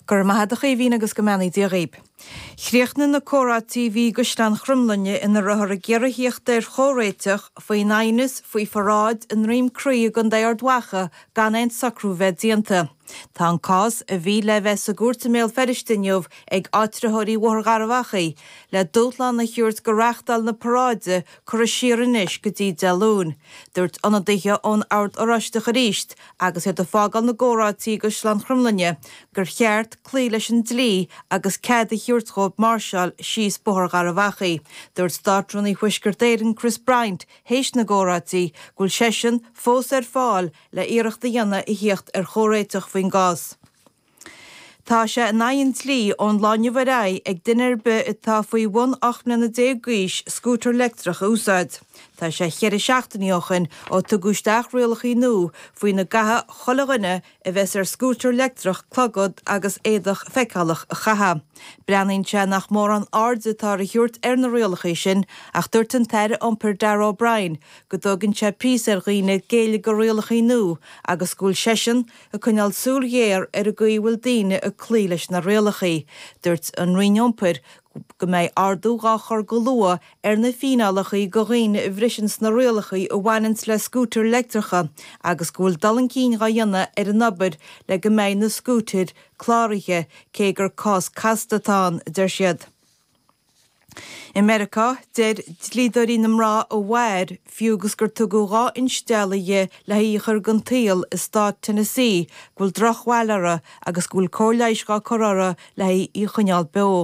Go raibh maith ad a Chaoimhín agus go mbeannaí Dia dhaoib. Chríochnaigh na comhráití a bhí i gCaisleán Chromghlinne ina rabhthar ag iarraidh a thíocht ar chomhréiteach faoin aighneas faoi pharáid i nDroim Crí i gContae Ard Mhacha gan aon socrú a bheith déanta. Tá an cás, a bhí le bheith sa gcúirt i mBéal Feirste inniu ag áitritheoirí Bhóthar Gharbh Achaidh, le dúshlán a thiúirt go reáchtáil na paráide curtha siar anois go dtí Dé Luain. Dúirt ionadaithe ón Ord Oráisteach aríst, agus iad ag fágáil na gcomhráití i gCaisleán Chromghlinne, gur cheart cloí leis an dlí agus cead a thabhairt dhóibh máirseáil síos Bóthar Gharbh Achaidh. Dúirt Státrúnaí Thuaisceart Éireann, Chris Bryant, théis na gcomhráití, go bhfuil seisean fós ar fáil le hiarracht a dhéanamh a thíocht ar chomhréiteach faoin gcás. Tá sé in aghaidh an dlí ón lá inniu ar aghaidh ag duine ar bith atá faoi bhun 18 mbliana d'aois scútar leictreach a úsáid. Tá sé cheithre seachtainí ó choin ó tugadh isteach rialachaí nua faoina gcaithfidh chuile dhuine a bheas ar scútar leictreach clogad agus éadach feiceálach a chaitheamh. Breathnaíonn sé nach mórán aird atá á thiúirt ar na rialachaí sin ach dúirt an tAire Iompair Darragh O'Brien go dtógann sé píosa ar dhaoine géilleadh go rialachaí nua agus go bhfuil seisean Ag coinneáil súil ghéar ar an gcaoi a bhfuil daoine ag cloí leis na rialachaí, dúirt an Roinn Iompair go mbeidh ardú dhá chur go luath ar na fíneálachaí go dhaoine a bhriseanns na rialachaí a bhaineanns le scútair leictreacha agus go bhfuil dul chun cinn dhá dhéanamh ar an obair le go mbeidh na scútair cláraithe, cé gur cás casta atá ann, a deir siad. I Meiriceá, deir dlíodóirí na mná a mhair, fiú agus gur tugadh dhá instealladh dhi le haghaidh í a chur den tsaol i Stát Tennessee, go bhfuil drochbhail uirthi agus go bhfuil cóir leighis dhá cur uirthi le haghaidh í a choinneáil beo.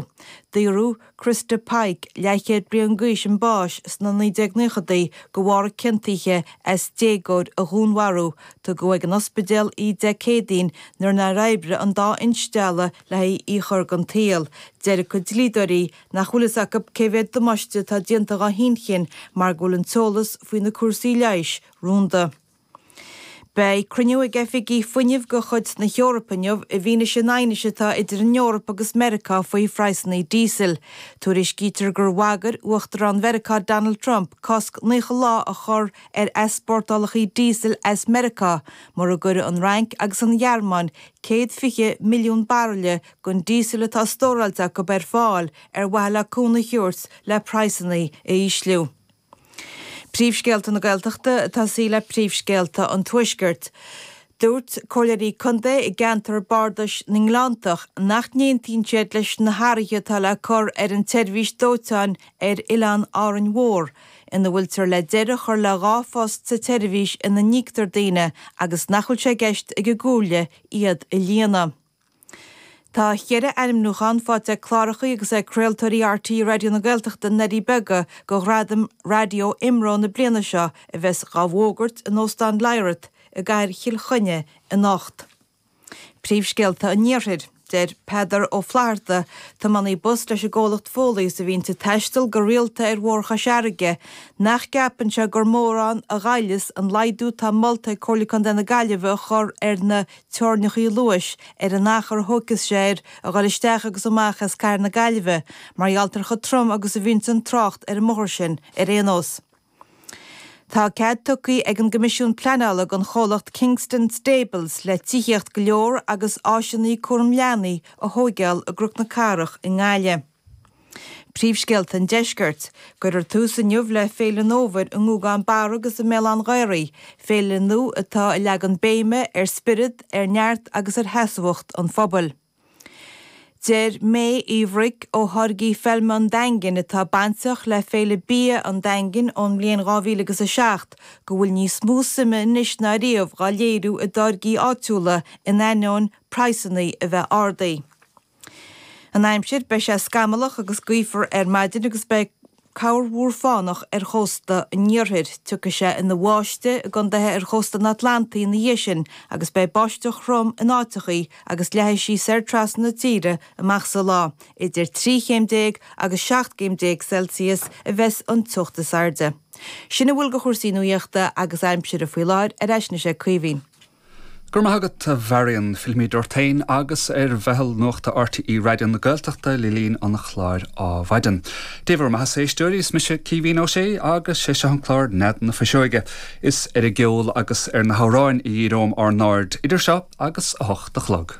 Daoradh Christa Pike, leathchéad bliain d'aois chun báis sna 1990idí go bharr a ciontaithe as déagóir a dhúnmharú, tugadh ag an ospidéal í Dé Céadaoin nuair nár oibrigh an dá instealladh le haghaidh í a chur den tsaol. Deir a cuid dlíodóirí nach bhfuil fhios acu cén méid damáiste atá déanta dhá hinchinn mar go bhfuil an t-eolas faoi na cúrsaí leighis rúnda. Beidh cruinniú ag oifigigh fuinnimh go chuid na hEorpa inniu i bhfianaise an aighnis atá idir an Eoraip agus Meiriceá faoi phraghsannaí díosail. Tuairiscítear gur bhagair Uachtarán Mheiriceá Donald Trump cosc 90 lá a chur ar easpórtálachaí díosail as Meiriceá mura gcuireadh an Fhrainc agus an Ghearmáin céad fiche milliún baraille gon díosal atá stóráilte acu ar fáil ar mhaithe le cúnamh a thabhairt le praghsannaí a ísliú. Príomhscéalta na Gaeltachta tosóidh muid le príomhscéalta an Tuaiscirt. Dúirt Comhairleoirí Contae i gceantar Bardais na nGleanntach nach n-aontaíonn siad leis na hathruithe atá le cur ar an tseirbhís dóiteáin ar Oileán Árainn Mhór, ina bhfuiltear le deireadh a chur le dhá phost sa tseirbhís ina n-íoctar daoine agus nach bhfuil sé i gceist ag an gComhairle iad a líonadh. Tá cheithre ainmniúchán faighte ag clárachaí agus ag craoltóirí RTÉ Raidió na Gaeltachta le haghaidh Beaga go Ghradaim Raidió IMRO na bliana seo a bheas dhá bhfógairt in Óstán Lyrath i gCathair Chill Chainnigh anocht. Príomhscéalta an Iarthair. Deir Peadar Ó Flatharta, tiománaí bus leis an gcomhlacht Foley is a bhíonn ag taisteal go rialta ar Bhóthar Chois Fharraige, nach gceapann sé gur mórán a ghoilleas an laghdú atá molta ag Comhairle Contae na Gaillimhe a chur ar na teorainneacha luais ar an achar a thógfas sé air a dhul isteach agus amach as cathair na Gaillimhe mar gheall ar chomh trom agus a bhíonns an trácht ar an mbóthar sin ar aon nós. Tá cead tugtha ag an gCoimisiún Pleanála don chomhlacht Kingston Stables le tithíocht go leor agus áiseanna cúram leanaí a thóigeáil i gCnoc na Cathrach i nGaillimh. Príomhscéalta an Deiscirt, Cuirfear tús inniu le Féile an Fhómhair i nGúgán Barra agus i mBéal an Ghaoraigh, féile nua atá ag leagan béime ar spiorad, ar neart agus ar sheasmhacht an phobail. Deir May Uí Bhruic ó Tháirgí Feilme an Daingin, atá bainteach le Féile Bia an Daingin ón mbliain dhá mhíle agus a seacht, go bhfuil níos mó suime anois ná riamh dhá léiriú i dtáirgí áitiúla in ainneoin praghsanna a bheith ardaithe. An aimsir, Beidh sé scamallach agus gaofar ar maidin agus beidh. Ceobhrán fánach ar chósta an iarthair. Tiocfaidh sé ina bháisteach i gcontaetha ar chósta an Atlantaigh ina dhiaidh sin agus beidh báisteach throm in áiteachaí agus leathfaidh sí soir trasna na tíre amach sa lá. Idir trí chéim déag agus seacht chéim déag Celsius a bheas an teocht is airde. Sin a bhfuil de chúrsaí nuaíochta agus aimsire faoi láthair, ar ais anois ag Caoimhín. Go raibh maith agat a Mharion. Fillfimid ort féin agus ar mheitheal nuachta RTÉ Raidió na Gaeltachta le linn an chláir ar maidin. Dé bhur mbeathasa a éisteoirí, is mise Caoimhín Ó Sé agus sé seo an clár Nead na Fuiseoige. Is ar an gceol agus ar na hamhráin a dhíreoimid ár n-aird idir seo agus a hocht a chlog.